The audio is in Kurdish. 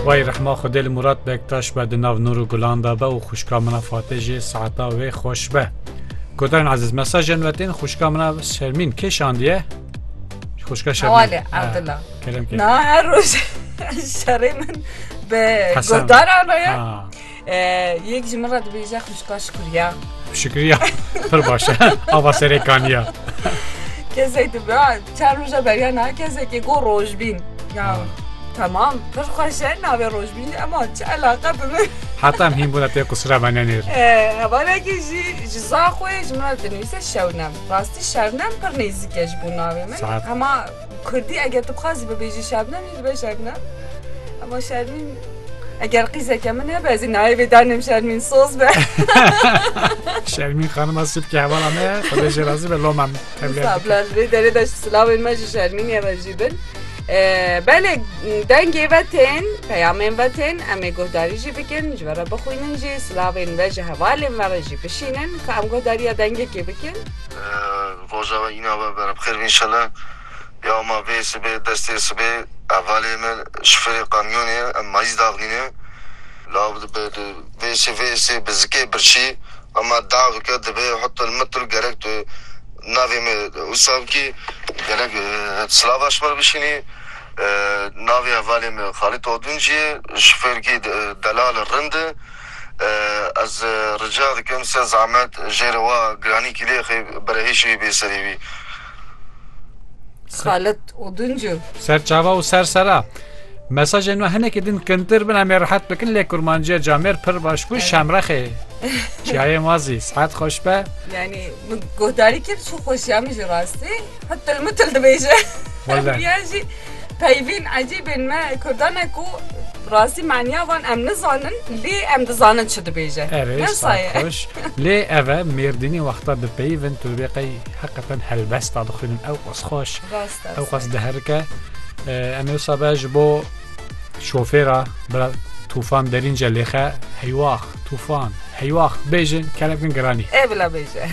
Wayî rehma Xwedê li Mûrat Bektaş be di nav nûr û gulan de be û xwişka min a Fatê jî saeta wê xweş be. Godarên ezîz mesajên me tên xwişka min a Şermîn kê şandiye? Xwişka Şermîn. Hewale Evdila. Kerem kê. Na her roj şerê min bi Hesen. godaran re ye. Ha. Yek ji min re dibêje xwişka Şikuriya. Şikuriya pir baş e. Ava serê kaniya. Kesek dibe çar roja beriya na kesekê go rojbîn. Ya tamam pir xweş e navê rojbîn ema çi elaqe bi min. Heta em hîn bûne tê qusira me nenêr. Hevalekî jî ji za xwe ji min re dinivîse şewnem. Rastî şernem pir nêzîk e ji bo navê min. Hema Kurdî eger tu bixwazî bibêjî Şebnem jî dibe Şebnem. Ama Şermîn eger qîzeke min hebe ez ê nayê danim Şermîn soz be. Şermîn xanima sip ki hevala me xwedêjê razî be loma min. Sablan vê derê de silavên me ji Şermînê re jî bin. Belê dengê ve tên peyamên ve tên em ê guhdarî jî bikin ji ve re bixwînin jî silavên ve ji hevalên ve re jî bişînin ka em guhdariya dengekê bikin. Roja we îna we bera bi xêr be înşela ya ma vê sibê destê sibê hevalê me ji firê qamyonê ye em mayîz daxnîne lav dibe di vê sê vê sê bi zikê birçî hema davike dibe hutil mitil gerek tu navê me usavkî gerek silava ji ber bişînî navê hevalê me xalît oduncî ye ji fêrkî delal e rind e. Ez rica dikim se zehmet jêrê wa giranî kîlêxê berehişî bê serê wî. Xalit Oduncu. Ser çava û ser sera. Mesajên me hinekî din kintir bin em ê rihet bikin lê kurmanciya camêr pir baş bû şemrexê. Çiyayê ma zî sihet xweş be. Yani min guhdarî kir çi xweşiya min jî rastî hitil mitil dibêje. Wele. Yan jî Peyvên ecêbên me kurdan e ku rastî maniya wan em nizanin lê em dizanin çi dibêje. Erê sar xweş. Lê ev e Mêrdînê wexta dipeyivin tu dibê qey heqeqen helbesta bixwînin ewqas xweş ewqas diherike. Em ê wisa be ji bo şofêra bira Tûfan Derînce lêxe heywax Tûfan heywax bêjin kele bikin giranî. Ê bila bêje.